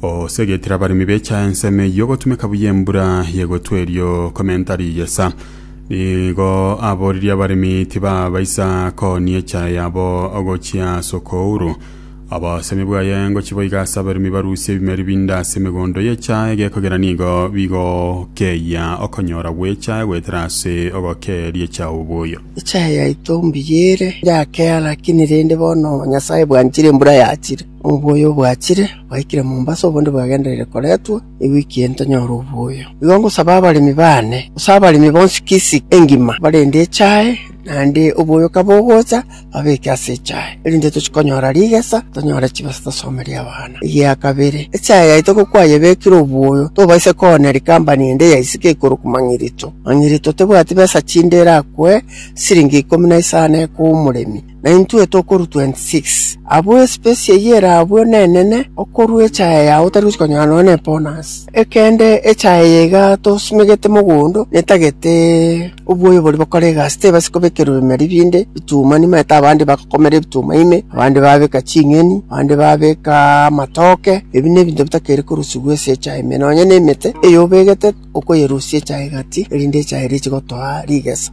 Osegetire abaremi becha ensemo eyio gotumeka buya embura y'egotwa erio komenta rigesa. Nigo aboririe abaremi tibabaisa koonia echa yabo gochia ase okouru. Obosemi bwaye ngochi boiga ase abaremi barusie ebimeri binde ase emegondo y'echa, egekogera nigo bigokeyia okonyora gw'echa goetera ase ogokeeria echa oboyo. Echa yaito mbuya ere, yakeea, lakini rende bono Nyasae bwanchire embura yachire. Oboyo bwachire, bwaikire Mombasa, obundi bwagenderire koretwa ewiki eye ntonyore oboyo. Igo ngosaba abaremi baane, gose abaremi bonsi Kisii engima, barende echae, naende oboyo kabogocha, babeke ase echae, erinde tochie konyora rigesa, tonyore chibesa tosomerie abana. Egia kabere, echae yaito kokwayebekire oboyo, tobaisa kooneri company ende ya isiko ekorokwa Mang'irito. Mang'irito tebwati besa chinde erakwe siringi ikomi na isano ekoa omoremi. na intwe tokorua 26. Abwo espesi eyio erabwo nenene okorua echaye yao otari gochia konyora nonya n'ebonasi. Ekende echaye eye iga tosimegete mogondo netagete oboyo boria bokora egasi tebasi kobekerwa bime ribinde bituma nimanyete nimanyete abande bagokomera ebituma ime, abande babeka ching'eni, abande babeka amatoke, ebi nebinto bitakeri korusigwa ase echaye ime. Nonya nemete eyobegete okoyerusia echaye gati erinde echaye eria echi gotoa rigesa.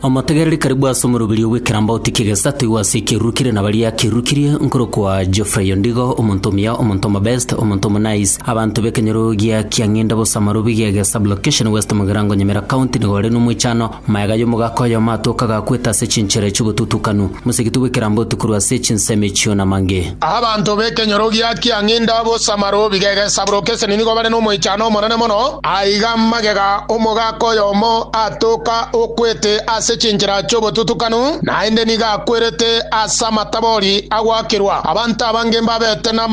Omotegereri karibu ase omoroberio bw'ekerambauti ki'egesato igwa ase ekeruru kire na baria akerukirie, nkorokwa Geoffrey Ondigo, omonto omuya, omonto omobest, omonto omonais. Abanto b'ekenyoro gia Kiang'inda bosa Marobi Giege Sub-location West Mugirango Nyamira County nigo bare n'omoichano, maega y'omogaka oyomo atoka gakwete ase chinchera echi'obotutukanu, mosegetwe bw'ekerambauti korwa ase chinsemo echio namange. Abanto b'ekenyoro gia Kiang'inda bosa Marobi Giege Sub-location nigo bare n'omoichano omonene mono, Aiga magega omogaka oyomo atoka okwete ase chinchera chi'obotutukanu, naende nigo akwerete ase amatabori agoakerwa, abanto abange mbabete namagoro.